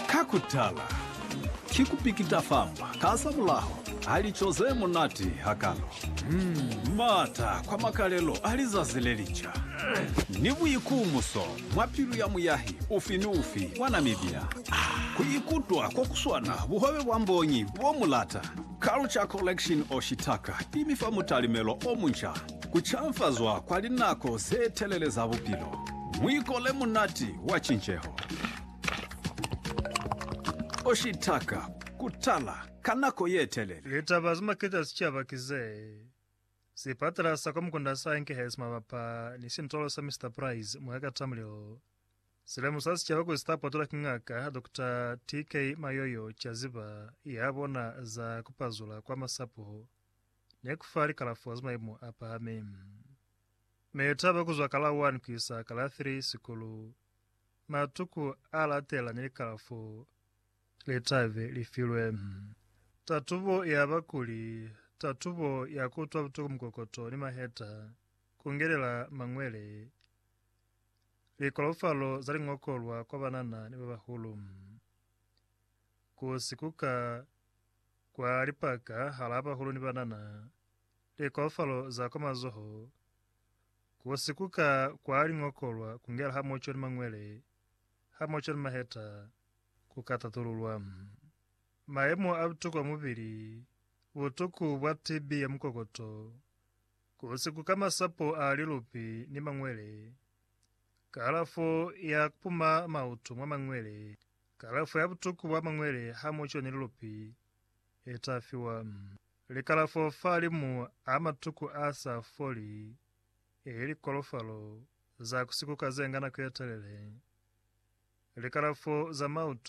Ka kutala, ki kupikita famba ka za mulaho ha lico ze munati hakalo, m'ata kwa makalelo a lizazi le lica, ni buikumuso mwa pilu ya muyahi ufi ni ufi wa Namibia ku ikutwa ko ku swana buhobe bwa mbonyi bo mu lata. Culture Collection Oshitaka i mi fa mutalimelo o munca. Ku canfazwa kwa linako ze telele za bupilo. Muiko le munati wa cinceho. O shitaka ku tala ka nako ye telele. Litaba ze maketa sicaba ki ze si patela sa kwa mukunda sa Enkehesi mabapa ni sintolo sa Mister Price mwa ka Tamrill. Si lemusa sicaba kuli sita potolwa ki Ngaka Doctor TK Mayoyo Chaziba ya bona za ku pazula kwa masapo. ne ku fa likalafo za maimo a pahami. Ne lu taba ku zwa ka la 1 ku isa ka la 3 sikulu. Matuku a latela ne likalafo le ta be li filwe tatubo ya bakuli, tatubo ya ku utwa butuku mukokoto ni maheta, ku ngelela mañwele, likolofalo za liñokolwa kwa banana ni ba bahulu, ku sikuka Kwa lipaka halaa bahulu ni banana, likoofalo za kwa mazoho, ku sikuka kwa liñokolwa kungela hamoco ni mañwele hamoco ni maheta, ku ka tatululwa. Mayemo a butuku a mubili, butuku bwa TB ya mukokoto, ku sikuka masapo a lilupi ni mañwele, kalafo ya kupuma mautu mwa mañwele, Kalafo ya butuku bwa mangwele ha mu coni lilupi e ta fiwa. Likalafo fa limu a matuku a sa foli, eli likolofalo za ku sikuka ze nga nako ye telele, likalafo za mautu,